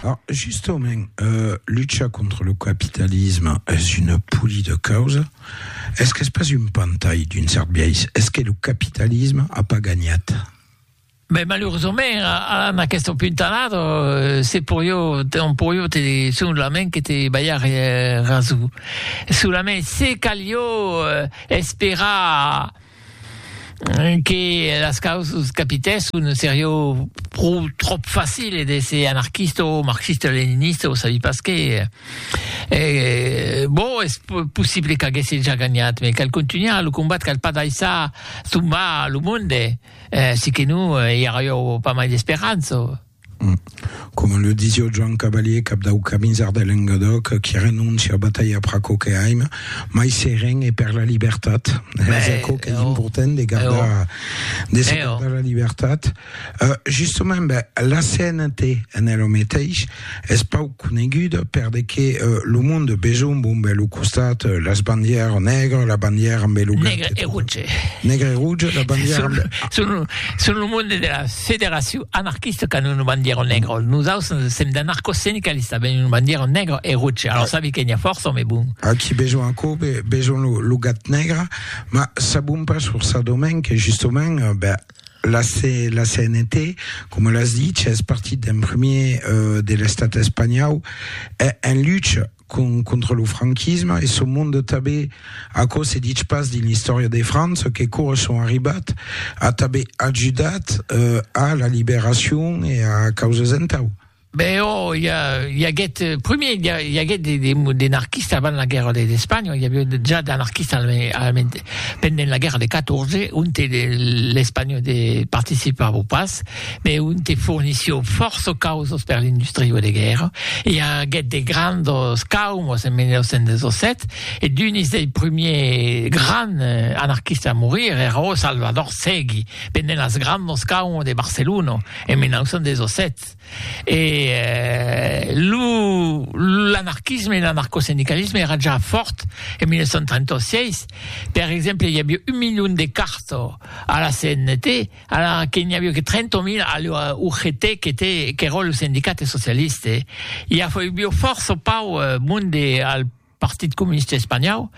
Alors, justement, euh, lucha contra lo capitalisme es una poli de causa. Es qu'es pas un pantai d'un cert biais? Es que lo capitalisme a pas gagnat? Ben, malurosament, a, en aquest puntalat, euh, se porio, on porio te, solament que te ballar eh, raso. Solament se calio eh, esperar... que las causas capitèsson serió pro tròp facile d'èsser anarquista o marxista-leninista o sabi pas qué, e bon es possible qu'aguèsse ja ganhat me cal contunhar lo combat cal pas daissar tombar lo monde, siqué non i arrió pas mai d'esperança. Coma le disio Joan Cavalier, cap dau Camisard de Lengadòc, qui renóncia a batalhar per aquò que aim, mai seren e per la libertat. Es aquò qu'es important de gardar, de se gardar la libertat. Justament, ben, la CNT en es lo meteis, es pauc coneguda per de que lo monde de besonh bombe lo costat, las bandièr nègra, la bandièr ambe lo verd, nègre e rouge, la bandièr ambe... Son lo monde de las... Federacion anarquista qu'an una bandiera negra, nosaus sèm d'anarcosindicalista, ben una bandiera negra e roja, alors sabi que n'i a fòrça òme bon. Aquí besonh aquò, besonh lo gat negre, ma sabon pas sur sa domaine que justement ben la CNT, coma l'as dich, es partit d'en premier de l'estat espanhau en lucha, contra lo franquisme e son monde tanben aquò se ditz pas dins l'istòria de França que cors son arribat a tanben ajudat a la liberacion e a causas entau Ben ò i a i aguèt primier i aguèt de de de narquista avant la guèrra de d'Espanha i aviá ja d'anarquista pendent la guèrra de 14 onte l'Espanha de participava pas. me un te fornission fòrça causas per l'industria de guèrra. I aguèt de grandos caumos en 1917 e d'unis dei prumiers grands anarquistes a morir èra ò Salvador Segui pendent las grandos caumos de Barcelona en 1917. E lo l'anarquisme e l'anarcosindicalisme èra ja fòrt en 1936. Per exemple, i aviá un milion de cartas a la CNT. Ara que n'i avió que 30.000 a l'ua UGT qu'eró lo sendicate socialiste, i afoibió fòrça o pauc monde al Partit Comuniste Espanhau,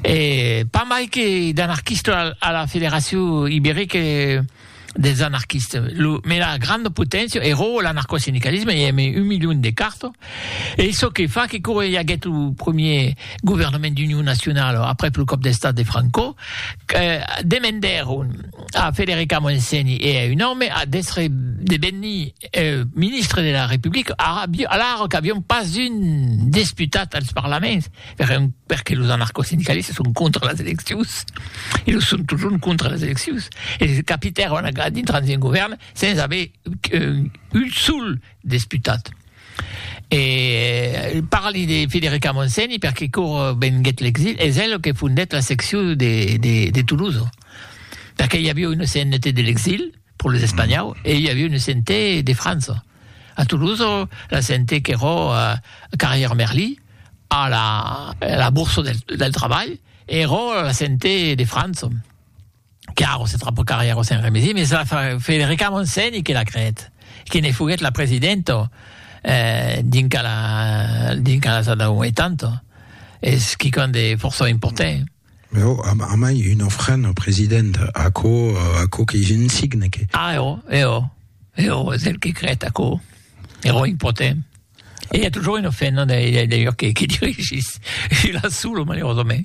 e pas mai que d'anarquistes a la Federacion Ibérique des Anarquistes. Lo mena granda poténcia eró l'anarcosindicalisme, i ème un milion de carto, e çò que fa que quau i aguèt lo premier governament d'union nacionala aprèp lo còp d'estat de Franco, demendèron, A Federica Montseny e a un òme a d'èstre devenir ministre de la Republica, alara qu'avián pas un desputat als parlaments, perque los anarcosindicalistas son contra las eleccions, e lo son totjorn contra las eleccions, e se capitèron a dintras d'un govèrn sens aver un sol desputat. E parli de Federica Montseny perque quora venguèt l'exil es el que fondèt la seccion de Toulouse. perque i avió una CNT de l'exil pro les Espanhau e i avió una CNT de França. A Toulouse, la CNT qu'eró a Carrière Merly, a la, a la Bourse del, del Trabalh, eró la CNT de França. Que ara se trapa Carrière au Saint-Rémézy, mes la fa Federica Montseny que l'a creèt, que ne foguèt la presidenta eh, dinca la, dinca las anau 80. Es quicòm de fòrça important. Mais oh, am amai un ofrent au president, aquò, aquò que je ne signe que. Ah, eo, eo, eo es el que crèt aquò, ero impotent. E i a toujours un ofrent, non, d'ailleurs, que, que dirigís, e la solo, malerosament.